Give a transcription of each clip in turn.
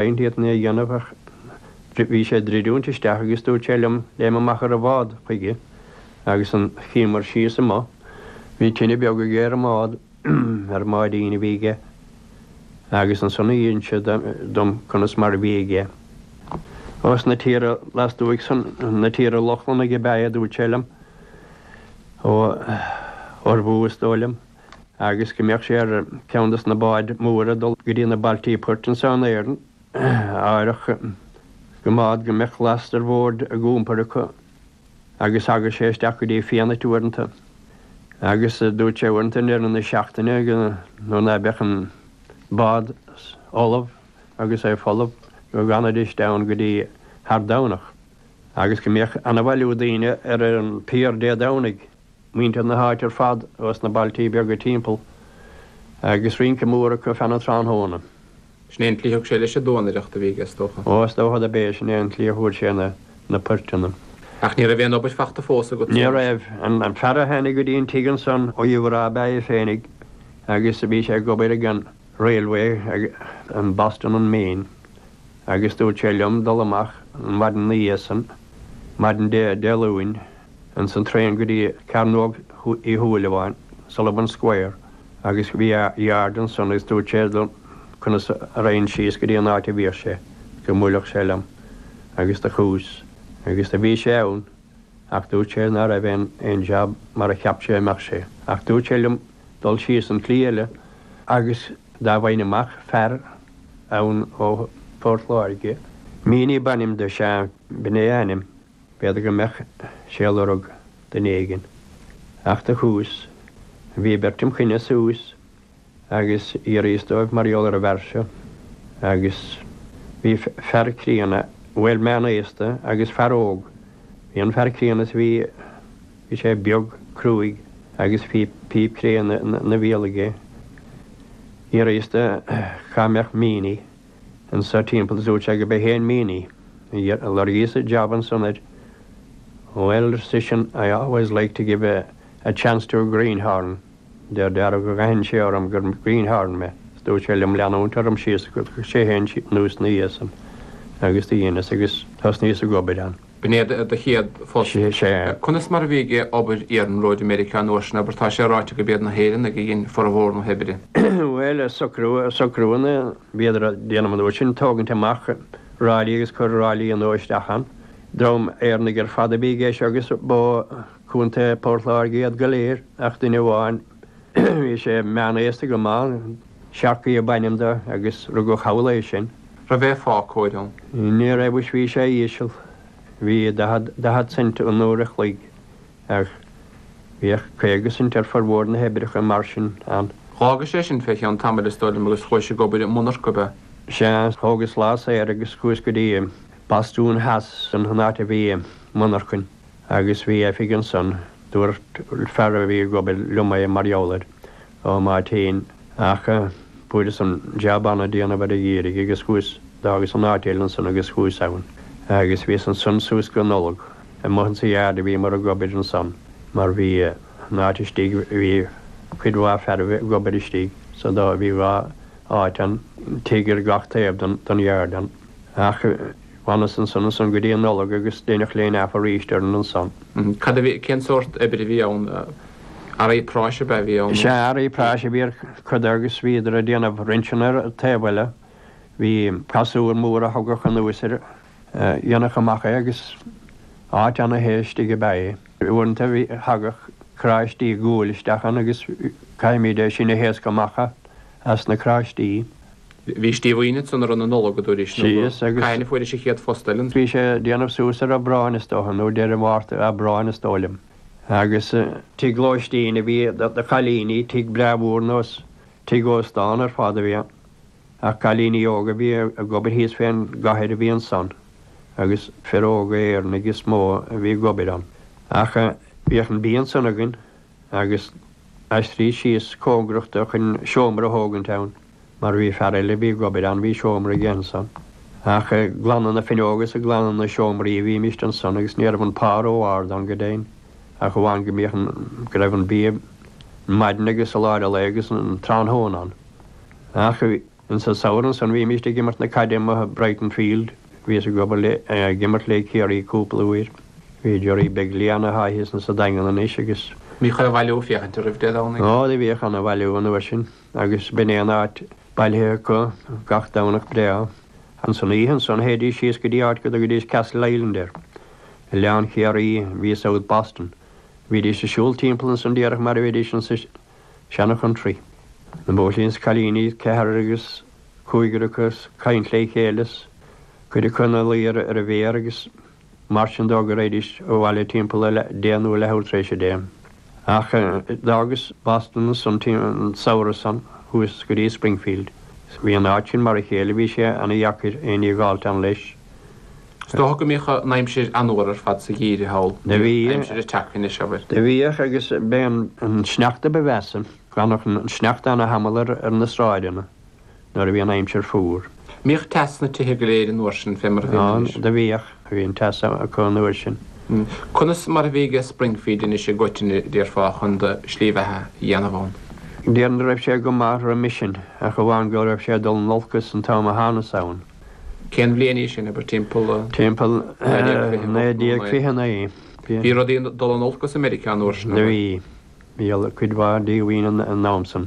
Aon iarraidh a dhéanamh ach bhí sé ag dridiúint isteach agus dúirt sé liom, léim amach as an mbád chuige agus an, shuíomar síos amuigh, bhí tine beag aige ar an mbád, ar an mbáidín a bhí aige agus ansan ag insint dom conas mar a bhí aige. Ó, sna tíortha lastuaidh san, na tíortha Lochlannaigh ab ea é a dúirt sé liom, ó Norway is dóigh liom. agus go mbíodh sé ar cheann dos na báid mhóra ag dul go dtí na bailte poirt anso in Éirinn, d'áireodh go mbíodh, go mbíodh last ar bord á iompar acu, agus tagadh sé isteach go dtí Fianait uaireanta, agus dúirt sé uaireanta i ndeireadh na seachtaine nuair ná beadh an bád ullamh agus é folamh go bhfanaidís ann go dtí thar Domhnach, agus go mbíodh ana-bhailiú daoine ar an bpier Dé Domhnaigh. muintir na háite ar fad as na bailte beaga timpeall agus rince mór acu feadh an tráthnóna. Sin é an tslí thug sé leis an duanaireacht, a bhí aige, is dócha. Ó, is dócha do b'é sin é an tslí a fuair sé na poirteanna. Ach ní raibh aon obair fachta fós agat, is dócha? Ní raibh. An fear a tháinig go dtí an tigh ansan ó Uíbh Ráthach ab ea é féinig agus bhí sé ag obair ag an railway, ag an Boston and Maine, agus dúirt sé liom dul amach an mhaidin 'na dhiaidh san, maidin Dé Luain. Ins an traein go dtí Cearnóg Uí Shúilleabháin, Sullivan Square, agus bhí yard ansan agus dúirt sé liom conas a raghainn síos go dtí an áit a bhíodh sé, go mbuailfeadh sé liom agus do chuas agus do bhí sé ann ach dúirt sé ná raibh aon aon jab mar a cheap sé a bheadh sé ach dúirt sé liom dul síos an tslí eile agus dá bhfaighinn amach fear ann ó Phort Láirge, Meaney b'ainm do, sea, b'in é a ainm. B'fhéidir go mbeadh sé ag lorg duine éigin, ach do chuas, bhí beirt im choinne suas agus d'fhiafraíos díobh mar gheall ar an bhfear seo agus bhí fear críonna, bhuel, meán aosta agus fear óg. Bhí an fear críonna is bhí sé beag, cruaidh agus bhí píp cré ina bhéal aige. D'fhiafraíos de cá mbeadh Meaney. anso timpeall is dúirt sé gurb é féin Meaney agus lorgaíos an job ansan air. Bhuel, ar seisean, I always like to give a, a chance to a greenhorn, de réir dealraimh gur aithin sé orm gur greenhorn mé, is dúirt sé liom leanúint orm síos go dtiocfadh sé féin anuas 'na dhiaidh san agus do dheineas agus thosnaíos ag obair ann. B'in é do chéad phost? Sea. Conas mar a bhí obair iarnróid i Meiriceá an uair sin, abair? Tá sé ráite gurb iad na hÉireannaigh a dhein formhór na hoibre. Bhuel, socrúanna a bhíodar a dhéanamh an uair sin, tógaint amach ráillí agus cur ráillí nua isteach ann. Dream Éireannach ar fad a bhí aige agus ba ó Chontae Phort Láirge iad go léir ach duine amháin, Bhí sé meánaosta go maith, Sharkey ab ainm do agus rugadh thall é sin. Raibh an pá cóir ann? Ní raibh is bhí sé íseal, bhí daichead, daichead cent an uair a chloig ach bhíodh caoga cent ar furmhór na hoibreacha mar sin ann. Dh'fhágais é sin fé cheann tamaill is dóigh liom agus chuais ag obair i monarcha ab ea? Sea, thógas lá saor agus chuas go dtí Bostún Theas, sin an áit a bhí monarchain. Agus bhí oifig ansan, dúirt fear a bhí ag obair liom é mar gheall air, Ó, má théinn ach fuaireas an jab ann a' déanamh ar a' gheimhridh agus chuas, d'fhágas an áit eile ansan agus chuas ann agus bhíos ansan suas go Nollaig, amuigh insa yard a bhíomar ag obair ansan mar bhí an áit istigh, bhí cuid mhaith fearaibh ag obair istigh so bhí dhá áit ann, tigh ar gach taobh den yard ann. Ach d'fhanas ansan ansan go dtí an Nollaig agus deineadh laying off arís orainn ansan. Cad a bhí, cén sórt oibre a bhí ann, earraí práis ab ea a bhí ann? Sea, earraí práis a bhí ar chuid de agus bhíodar ag déanamh rinseanna ar an taobh eile. Bhí casúr mór a thugadh anuas air, dhéanadh amach é agus áit ana-the istigh ab ea é. Uaireanta thagadh cráistí guail isteach ann agus chaithimíd é sin a thaoscadh amach. as na cráistí. Bhís díomhaoin ansan i rith na Nollag, a dúraís, nó go cathain a fuairis a chéad phost eile ann. Bhí sé ag déanamh suas ar Aibreán, is dócha, nó deireadh Mhárta, Aibreáin, is dóigh liom, agus. Tigh lóistín a bhí do chailíní, tigh breá mhór nós, tigh óstán ar fad a bhí ann. Ach cailíní óga a bhí ag obair thíos fén gcathair a bhí ansan, agus fir óga Éireannaigh is mó a bhí ag obair ann. Ach bhíodh an bia ansan againn. agus aistríos síos cóngarach do chun seomra a thógaint ann, mar bhí fear eile a bhí ag obair ann, bhí seomra aige ansan. Ach ag glanadh na finneóga is ag glanadh na seomraí a bhímist ansan agus ní raibh an pá ró-árd ann go deimhin, ach amháin go mbíodh an, go raibh an bia ar maidin agus i lár a lae agus an tráthnóna ann. Ach. An samhradh san bhímíst ag imirt na caide amuigh i Brighton Field. Bhíos ag obair le, ag imirt le Ciarraí cúpla uair. Bhí Jerry beag liath ann atá thíos insa Daingean anois agus. Bhíodh ana bhailiú ag féachaint oraibh Dé Domhnaigh. Ó, do bhíodh ana bhailiú an uair sin agus b'in é an áit bailithe acu gach Domhnach breá. Insan oíche ansan théidís síos go dtí áit go dtugaidís Castle Island air. Oileán Chiarraí a bhí i South Boston. Bhídís a siúl timpeall ansan díreach mar a bheidís insa. Seana country. Na buachaillí 's cailíní ceathrar agus cúigear acu 's caint le chéile 's cuid acu ina luí ar a bhféar agus mar sin de go raghaidís abhaile timpeall a deich nó a leathuair tar éis a deich. Ach d'fhágas Boston ansan an samhradh san chuas go dtí Springfield 's bhí an áit sin mar a chéile bhí sé ana dheacair aon ní a dh'fháilt ann leis. Is dócha go mbíodh an aimsir an-fhuar ar fad sa gheimhreadh thall, aimsir a tchifidh anois, abair. Do bhíodh, agus b'é an sneachta ba mheasa, d'fhanadh an sneachta ana-thamall ar na sráideanna nuair a bhí an aimsir fuar. An mbíodh teas sna tithe go léir an uair sin, fé mar a bhíonn anois? Á, do bhíodh, bhí an teas acu an uair sin. Conas mar a bhí ag Springfield anois i gcoitinne, déarfá, chun do shlí bheatha a dhéanamh ann? Déarfainn go raibh sé go maith roimis sin, ach amháin go raibh sé ag dul in olcas an t-am a thánas ann. Cén bhliain í sin, abair, timpeall? Timpeall 1929. Bhí rudaí ag dul in olcas i Meiriceá an uair sin, an raibh? Bhí, bhí cuid mhaith díomhaoin an t-am san.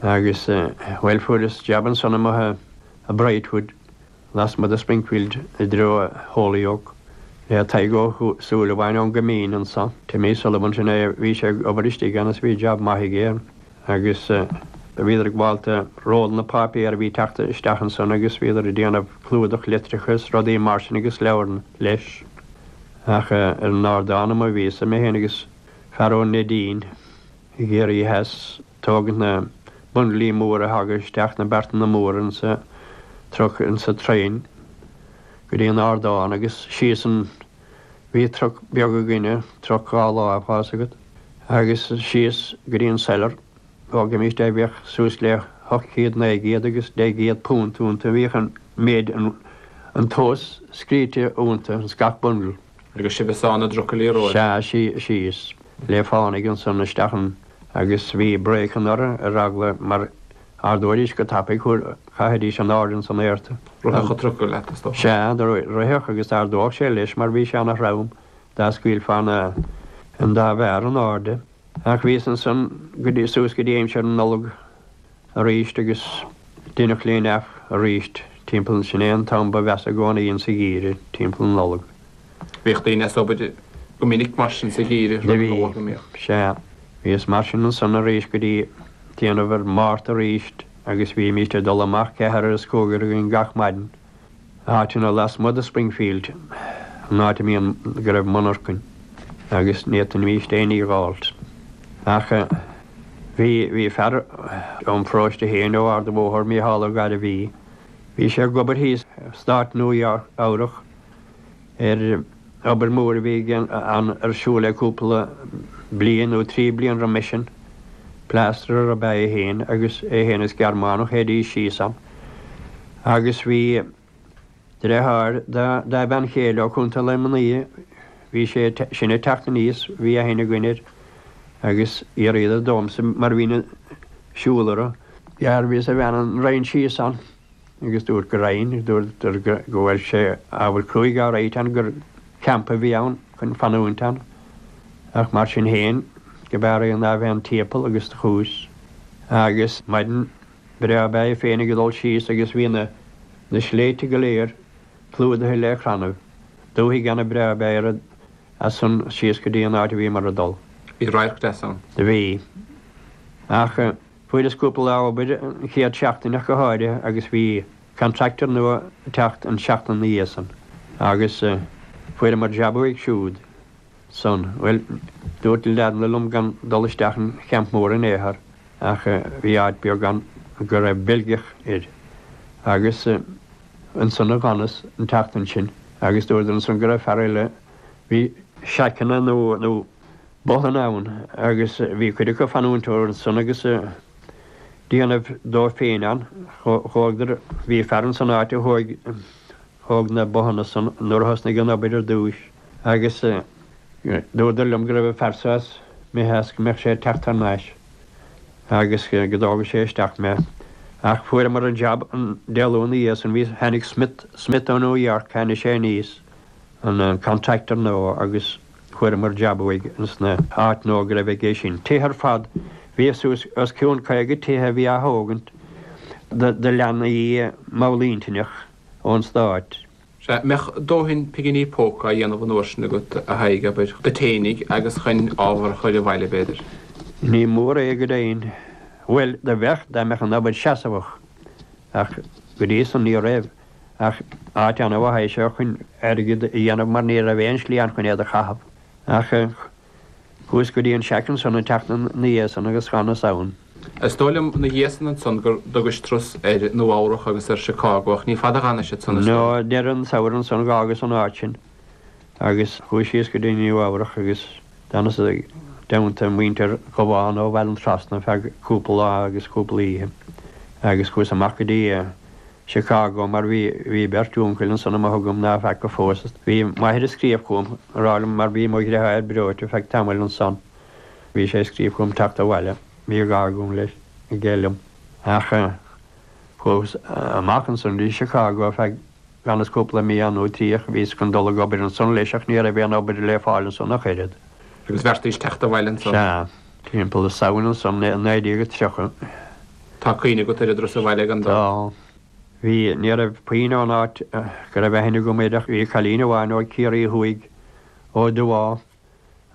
Agus, bhuel, fuaireas jab ansan amuigh i Brightwood, lasmuigh de Springfield, i dtreo Holyoke, le Tadhg Ó Súilleabháin ón gCoimín anso, Timmy Sullivan, sin é a raibh sé ag obair istigh ann is bhí jab maith aige Agus bhíodar ag baint rollanna páipéir a bhí teacht isteach ansan agus bhíodar ag déanamh clúdach litreacha is rudaí mar sin agus leabhar leis. Ach ar an ardán amuigh a bhíos-sa, mé féin agus fear ó Neidín, ag iarraidh a bheith ag tógaint na bundlaí móra a thagadh isteach, na beartanna móra insa truck, insa traein, go dtí an ardán agus síos ann. Bhí truc beag againne, truc dhá láimh, tá's agat, agus síos go dtí an cellar. Thógaimíst é, bhíodh suas le hocht gcéad, naoi gcéad agus deich gcéad punt ionta, bhíodh an méid, an tomhas scríte ionta, ins gach bundle. Agus sibh is ádh na dtrucailí a róimh. Sea, síos le fánaidh ansan isteach ann, agus bhí breaceanna orthu ar eagla mar. Ardóidís go tapaidh, chaithfidís in airde ins an aer. Rithfeadh an trucail leat, a stopadh. Sea, rithfeadh agus d'ardódh sé leis mar bhí sé ana-throm dá scaoilfeá an dá bharra in airde. Ach bhíos ansan go dtí, suas go dtí aimsir na Nollag aríst agus deineadh linn aríst timpeall, sin é an t-am ba mheasa i gcónaí insa gheimhridh, timpeall na Nollag. Bhíodh daoine as obair go minic mar sin sa gheimhridh, rith na Nollag go mbíodh. Sea. Bhíos mar sin ansan arís go dtí déanamh ar Márta arís agus bhímíst ag dul amach ceathrar is cúigear againn gach maidin, áiteanna lasmuigh de Springfield, an áit a mbíonn go raibh monarchain, agus ní fhéadaimíst aon ní a dh'fháilt. Ach bhí, bhí fear ón pharóiste féin, ó Ard an Bhóthair, Mícheál Ó Gairbhí, bhí sé ag obair thíos i stát Nua Eabhrac, ar obair mhór a bhí ar siúl aige cúpla bliain nó trí bliana roimis sin. Plasterer ab ea é féin agus é féin is Gearmánach, théidís síos ann. Agus bhí driotháir dá bhean chéile ó Chontae Luimnigh, bhí sé sin ag teacht aníos, bhí aithne againn air agus d'fhiafraíodar domhsa mar bhínn ag siúl orthu, féachaint an raghainn síos ann. agus dúirt go raghainn, agus dúradar go bhfuil sé ábhar cruaidh alright ann gur campa a bhí ann chun fanúint ann, ach mar sin féin go b'fhearr é ná bheith an timpeall agus do chuas agus maidin bhreá ab ea é féinig ag dul síos agus bhí na na sléibhte go léir clúdaithe le crannaibh, dúthaigh ana bhreá ab ea é rud as san síos go dtí an áit a bhíomar ag dul. Bhí radharc deas ann. Do bhí. Ach. Fuaireas cúpla lá obair an chéad seachtain ach go háirithe agus bhí contractor nua ag teacht an tseachtain ina dhiaidh san agus fuaireamar jab uaidh siúd ansan. Bhuel, dúirt na leaideanna liom gan dul isteach an champ mór in aon chor ach bhí áit beag ann go raibh Beilgeach air agus ansan a d'fhanas an tseachtain sin agus dúradar ansan go raibh fear eile a bhí seaiceanna nó Bothanna ann agus bhí cuid acu ag fanúint ansan agus a' déanamh dóibh féin ann. Thógadar, bhí fear ansan áit a thóig, thóg na bothanna san nuair a thosnaigh an obair ar dtúis agus dúradar liom go raibh fear sa as Meitheasc go mbeadh sé ag teacht thar nais agus go dtógfadh sé isteach mé ach fuaireamar an jab an Dé Luain 'na dhiaidh san bhí, tháinig Smith, Smith ó New York, tháinig sé aníos, an contractor nua agus. Fuaireamar jab uaidh insan áit nua go raibh aige sin. Tithe ar fad. Bhí suas os cionn 50 tithe a bhí á thógaint do leanaí mallintinneach ón stáit. Sea, mbeadh dóthain pinginí póca á dhéanamh an uair sin agat, a Thaidhg, abair, duit fhéinig agus chun ábhar a chur abhaile, b'fhéidir. Ní mór é go deimhin. Bhuel, do bheadh, dá mbeadh an obair seasamhach. Ach go dtí san ní raibh. ach áit an-mhaith é seo chun airgead a dhéanamh mar ní raibh aon slí ann chun iad a chaitheamh ach chuas go dtí an seaic ansan an tseachtain ina dhiaidhsan agus d'fhanas ann. Is dóigh liom ina dhiaidhsan ansan gur dtugais turas ar Nua Eabhrac agus ar Chicago ach ní fada a dh'fhanais ansan is dóigh. No, deireadh an tsamhraidh ansan dh'fhágas an áit sin agus chuas síos go dtí Nua Eabhrac agus d'fhanas i dteannta muintir Ghabháin ó Bhaile an Trasna feadh cúpla lá agus cúpla oíche agus chuas amach go dtí Chicago mar bhí bhí beirt úncail ansan amuigh agam ná feaca fós iad. Bhí m'athair ag scríobh chugam a rá liom mar bhí mo dheartháir breoite feadh tamaill ansan bhí sé ag scríobh chugam teacht abhaile. Bhí gá agam leis, aige liom. Ach chuas amach ansan go dtí Chicago feadh d'fhanas cúpla mí ann nó trí ach bhíos chun dul ag obair ansan leis ach ní raibh aon obair le fáil ansan ach oiread. Agus bheartaíos teacht abhaile ansan. Sea. Timpeall an Samhain ansan i naoi déag is tríocha. Tá cuimhne agat ar an dris abhaile ag an dó? Tá. Bhí. Ní raibh puinn ón áit go raibh aithne agam air ach bhí cailín amháin ó Chiarraí Thuaidh, ó Dubhá,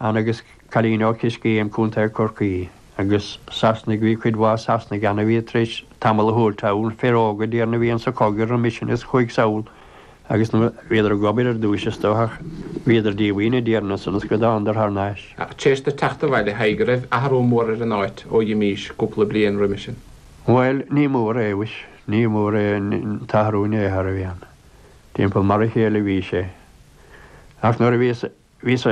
ann agus cailín ó Choiscéim, Co. Chorcaí. Agus Sasanaigh, bhí cuid mhaith Sasanaigh ann a bhí tar éis tamall a thabhairt ann, fir óga, déarfainn, a bhí ann sa chogadh roimis sin is chuaigh sall. Agus nuair a bhíodar ag obair ar dtúis is dócha bhíodar díomhaoin déarfainn ansan go dtánadar thar nais. Ach théis do teacht abhaile dóigh an raibh athrú mór ar an áit ó dh'imís cúpla bliain roimis sin. Bhuel, ní mór é, mhuis. Ní mór é an t-athrú inné thar a bhí ann. Timpeall mar a chéile a bhí sé. Ach nuair a bhíos Bhíos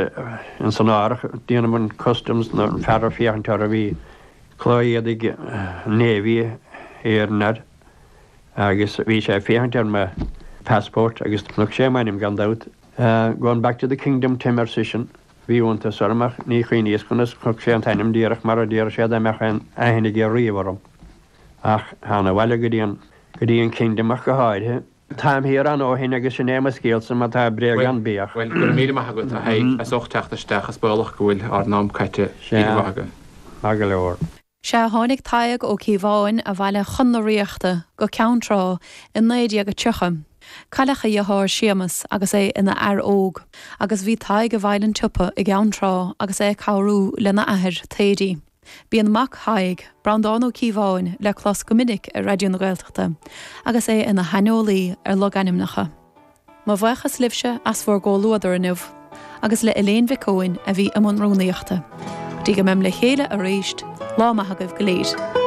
ins an árthach, déanamh an Customs nó an fear a' féachaint ortha bhí culaith éadaigh navy air agus bhí sé a' féachaint ar mo Passport agus chonaic sé m'ainm gan dabht. Goin' back to the Kingdom Tim ar seisean. Bhí iontas orm ach ní chuimhníos conas chonaic sé an t-ainm díreach mar a déaradh sé dá mbeadh aon aithne aige riamh orm. Ach thánag abhaile go dtí an, go dtí an Kingdom ach go háirithe. Táim thiar ann ó shin agus sin é mo scéalsa, má tá bréag ann, bíodh. Bhuel, go raibh míle maith agat, a Thaidhg, as ucht teacht isteach. Is baolach go bhfuil ár n-am caite. Oíche mhaith agaibh. Maith go leor. Sea, tháinig Tadhg Ó Cíobháin abhaile chun na Ríochta go Ceann Trá i 1930. Cailleadh a dheartháir Séamas agus é ina fhear óg, agus bhí Tadhg i bhfeighil an tsiopa i gCeann Trá agus é ag cabhrú lena athair, Thady. Bíonn mac Thaidhg, Breandán Ó Cíobháin, le clos go minic ar Raidió na Gaeltachta agus é ina shaineolaí ar logainmneacha. Mo bhuíochas libhse as bhur gcomhluadar inniu, agus le Eiléan Mhic Eoin a bhí i mbun rúnaíochta. Go dtí go mbeam le chéile arís, lá maith agaibh go léir.